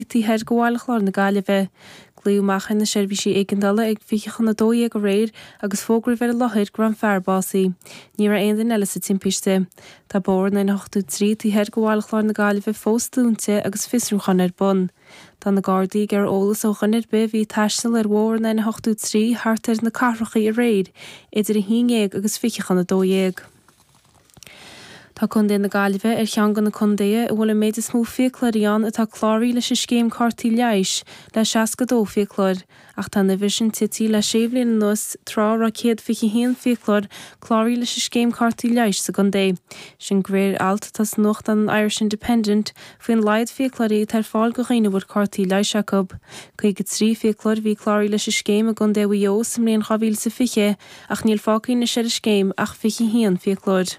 Taobh thiar go Bhaile Chlár na Gaillimhe. Glaodh amach ar na seirbhísí éigeandála ag fiche chun a dó dhéag aréir agus fógraíodh ar an láthair go raibh an fear básaí. Ní raibh aon duine eile sa timpiste. Tá bóthar an N83 taobh thiar go Bhaile Chlár na Gaillimhe fós dúnta agus fiosrúchán ar bun. Tá na Gardaí ag iarraidh eolas ó dhuine ar bith a bhí ag taisteal ar bhóthar an N83 thart ar na Cathracha aréir idir a haon déag agus fiche chun a dó dhéag. Tá Contae na Gaillimhe ar cheann de na contaetha a bhfuil an méid is mó fiaclóirí ann atá cláraí leis an scéim cártaí leighis, le 62 fiaclóir, ach tá an uimhir sin tití le sé bhliain anuas, tráth a raibh 121 fiaclóir cláraí leis an scéim cártaí leighis sa gcontae. Sin de réir alt atá sa nuachtán an Irish Independent faoin laghad fiaclóirí atá ar fáil do dhaoine a bhfuil cártaí leighis acu. 53 fiaclóir a bhí cláraí leis an scéim i gcontae Mhaigh Eo sa mbliain 2020, Ach níl fágtha anois ar an scéim ach 21 fiaclóir.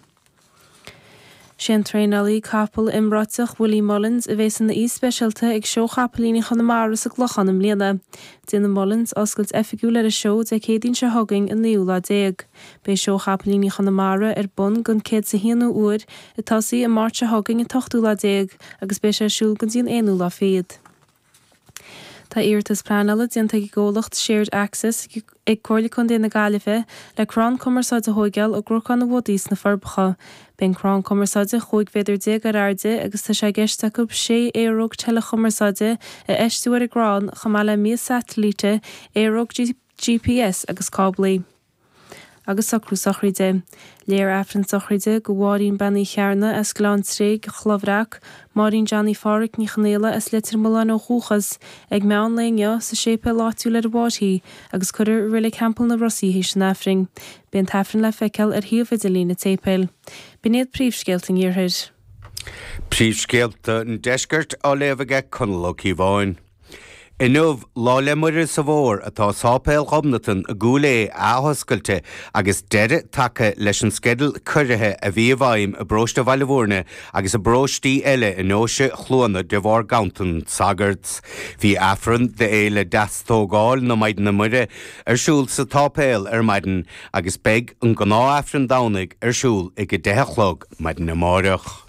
Sé an traenálaí capall iomráiteach Willie Mullins a bhéas ina aoi speisialta ag Seó Chapaillíní Chonamara sa gClochán i mbliana. Déanfaidh Mullins oscailt oifigiúil ar an seó Dé Céadaoin seo chugainn an naoú lá déag. Beidh Seó Chapaillíní Chonamara ar bun gon chéad is a haonú uair ag tosaí an Máirt seo chugainn an t-ochtú lá déag agus beidh sé ar siúl go dtí an aonú lá fichead. Tá iarratas pleanála déanta ag an gcomhlacht Shared Access ag Comhairle Contae na Gaillimhe le crann cumarsáide a thóigeáil i gCnocán an Bhodaigh sna Forbacha. Beidh an crann cumarsáide 15 mhéadar ar airde agus tá sé i gceist acu 6 aeróg teileachumarsáide a fheistiú ar an gcrann chomh maith le mias satailíte, aeróg GPS agus cáblaí. agus socrú sochraide. Léifear Aifreann sochraide go Mháirín Bean Uí Chearnaigh as Gleann Tréig, An Chloch Bhreac, Máirín Johnny Pháraic Ní Chonaola as Leitir Mealláin ó dhúchas, ag meán lae inniu sa séipéal áitiúil ar an bhFairche agus cuirfear i Reilig Theampall na Rosa í th'éis an Aifrinn. Beidh an tAifreann le feiceáil ar shuíomh idirlín an tséipéil. B'in iad príomhscéalta an Iarthair. Príomhscéalta an Deiscirt á léamh aige Conall Ó Cíobháin. Inniu, Lá 'le Muire sa bhFómhar, atá Sáipéal Ghobnatan i gCúil Aodha athoscailte agus deireadh tagtha leis an sceideal ciorruithe a bhí i bhfeidhm i bparóiste Bhaile Mhúirne agus i bparóistí eile i nDeoise Chluana de bharr ganntan sagart. Bhí Aifreann d'Fhéile Deastógáil na Maighdine Muire ar siúl sa tsáipéal ar maidin agus beidh an gnáth-Aifreann Domhnaigh ar siúl ag a deich a chlog maidin amáireach.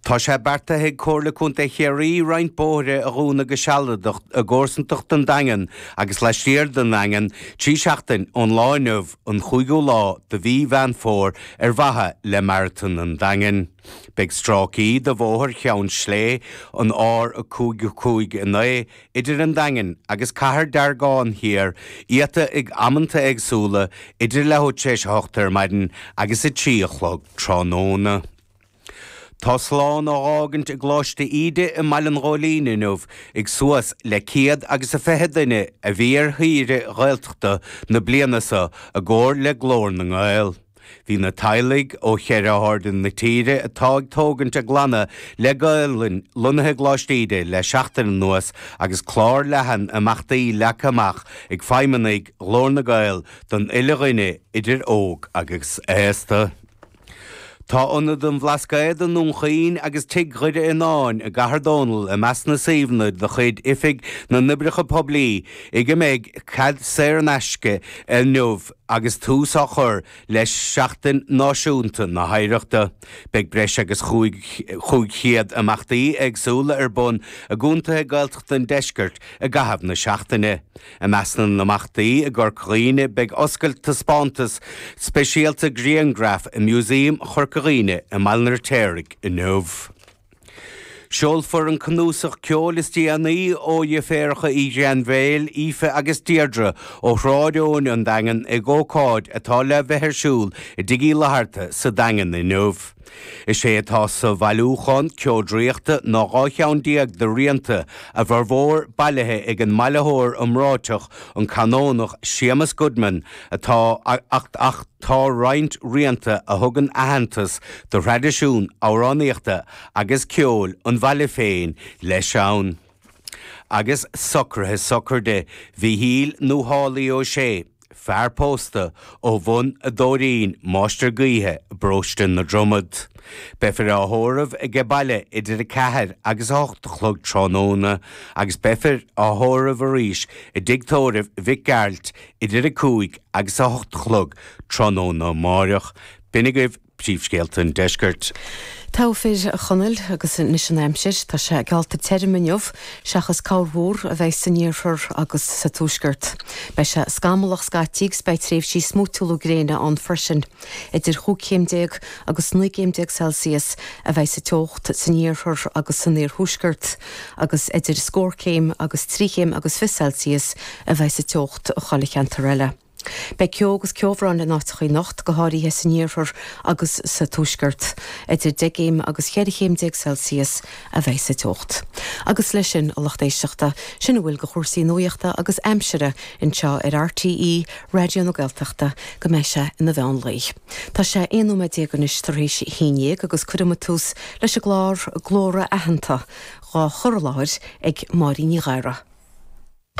Tá sé beartaithe ag Comhairle Contae Chiarraí roinnt bóithre a dhúnadh go sealadach i gcomharsantacht an Daingin agus laistiar den Daingean trí seachtaine ón lá inniu, an cúigiú lá de mhí Mheán Fómhair ar mhaithe le Maratón an Daingin. Beidh stráicí de bhóthar Cheann Sléibhe, an R559, idir an Daingean agus Cathair Deargáin thiar iata ag amanta éagsúla idir leathuair tréis a hocht ar maidin agus a trí a chlog tráthnóna. Tá slán á dh'fhágaint i gColáiste Íde i mBaile an Ghóilín inniu ag suas le ciad agus a fiche duine a bhí ar shaoire Ghaeltachta na bliana so i gcomhar le Glór na nGael. Bhí na teaghlaigh ó cheithre harda na tíre atá ag tógaint a gclanna le Gaolainn lonnaithe i gColáiste Íde le seachtain anuas agus clár leathan imeachtaí leagtha amach ag feidhmeannaigh Ghlór na nGael don uile dhuine idir óg agus aosta. Tá Ionad an Bhlascaoid i nDún Chaoin agus Tigh Dhoire Fhionáin i gCathair Dónall i measc na suíomhanna de chuid Oifig na nOibreacha Poiblí ag a mbeidh cead saor in aisce inniu. Agus tús á chur le Seachtain Náisiúnta na hOidhreachta, beidh breis agus 500 imeachtaí éagsúla ar bun i gcontaetha Gaeltachta an Deiscirt i gcaitheamh na seachtaine. I measc na n-imeachtaí i gCorca Dhuibhne beidh oscailt taispeántas speisialta grianghraf i Músaem Chorca Dhuibhne i mBaile an Fheirtéaraigh inniu. Seolfar an cnuasach ceoil is déanaí ó dheirféaracha Uí Ghrainbhéil, Aoife agus Deirdre, ó Shráid Eoin, An Daingean, ag ócáid atá le bheith ar siúl i dTigh Uí Fhlatharta sa Daingean inniu. Is é atá sa bhailiúchán Ceo Draíochta ná dhá cheann déag de rianta, a bhformhór bailithe ag an mbailitheoir iomráiteach, an Canónach Séamus Goodman, atá ach tá roinnt rianta a thugann aitheantas do thraidisiún amhránaíochta agus ceoil an bhaile féin leis ann. Agus socruithe sochraide Mhichíl nó Haulie Ó Sé, fear pósta ó Bhun a' Doirín, Máistir Gaoithe i bparóiste na Dromad. Beifear á thórramh aige baile idir a ceathair agus a hocht a chlog tráthnóna agus beifear á thórramh arís i dtigh tórraimh Mhic Gearailt, Idir 5 agus 8 a chlog tráthnóna amáireach, b'in agaibh príomhscéalta an deiscirt. Togha fir, a Chonaill, agus anois an aimsir. Tá sé geallta tirim inniu, seachas corrmhúr a bheidh san iarthar agus sa tuaisceart. Beidh sé scamallach scaití agus beidh tréimhsí smúitiúla gréine ann freisin. Idir chúig chéim déag agus naoi gcéim déag Celsius a bheidh sa teocht san iarthar agus san iarthuaisceart. agus idir scór céim agus trí chéim agus fiche Celsius a bheidh sa teocht i chuile cheantar eile. Beidh ceo agus ceobhrán in áiteacha anocht, go háirithe san iarthar agus sa tuaisceart. Idir deich gcéim agus cheithre chéim déag Celsius a bheidh sa teocht. Agus leis sin, a lucht éisteachta, sin a bhfuil de chúrsaí nuaíochta agus aimsire anseo ar RTÉ Raidió na Gaeltachta go mbeidh sé ina mheán lae. Tá sé 11 nóiméad anois tar éis a haon dhéag agus cuirfimid tús leis an gclár glórtha Aitheanta, dhá chur i láthair ag Máirín Ní Ghadhra.